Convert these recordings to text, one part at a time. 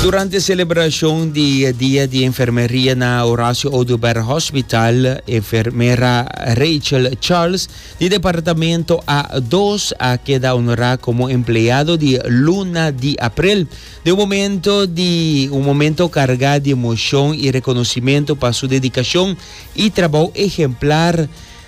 Durante celebracion di Dia di Enfermeria na Horacio Oduber Hospital, enfermera Rachel Charles di Departamento A dos a keda honora como empleado di luna di April. De un momento di un momento carga di emocion y reconocimento pa su dedicacion y trabou ehemplar,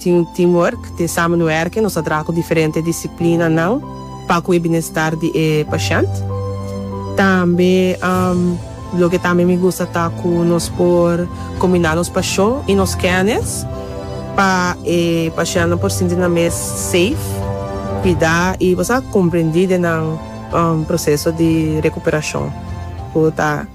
Tin un teamwork, tin samenwerking, nos a traha ku diferente disiplinanan pa kue binestar di e pashènt. Tambe loke tambe mi gusta ta ku nos por kombiná nos pashon i nos kènis pa e pashèntnan por sinti nan mes safe, kuidá i bo sa, komprendí den nan proseso di rekuperashon ku ta.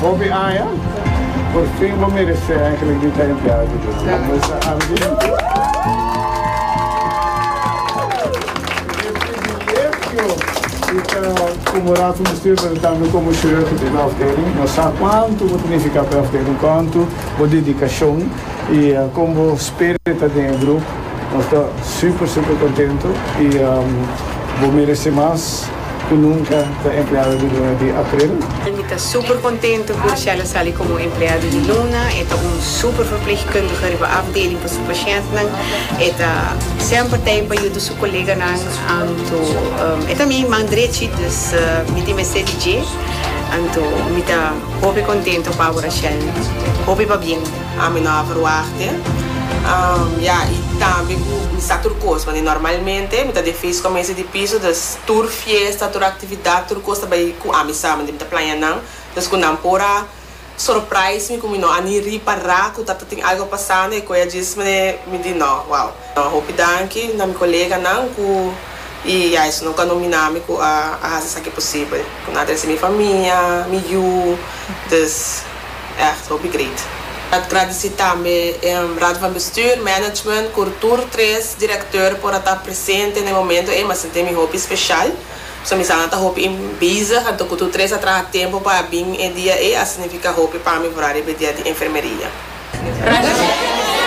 Hopi aña, por fin bo meresé eigenlijk di ta empleado di Dios. Bo mester a privilegio di ta komorato mester presentando komo church di bo afdeling. Nos sa kuantu bo ta nifiká pa e afdeling, kuantu bo dedikashon i kon bo spirit ta den e grup. Nos ta super super kontento i bo meresé mas. ku nunka ta empleado di luna di april. Mi ta super kontento ku Rochella sali komo empleado di luna. E ta un super verpleegkundige riba afdeling pa su pashentenan. E ta semper tei pa yuda su koleganan. Anto e ta mi man drechi, dus mi tin mester di dje. Anto mi ta hopi kontento pa bo Rochella. Hopi pabien. Ami no a verwachtte ya i tambe ku mi sa tur kos pasobra normalmente mi ta den feest kominsio di piso dus tur fiesta tur aktividat tur kos ta bai ku ami sa mi ta plaña nan dus ku nan por a surprise mi ku mi no a ni ripará ku ta tin algu pasando e kue a djis mi mi di no wow a hopi danki na mi koleganan ku i ya esun ku a nominá mi ku a hasi esaki posibel ku nan a trese mi famia mi yu dus. Ècht hopi great. Ta gradisí tambe e Raad van Bestuur, Management, Kurtur tres, Direkteur por a ta presente na e momento ei. Mi a sentí mi hopi speshal. So mi sa nan ta hopi bezig anto Kurtur tres a traha tempu pa a bin e dia ei a signifiká hopi pa mi for a riba e dia di enfermeria.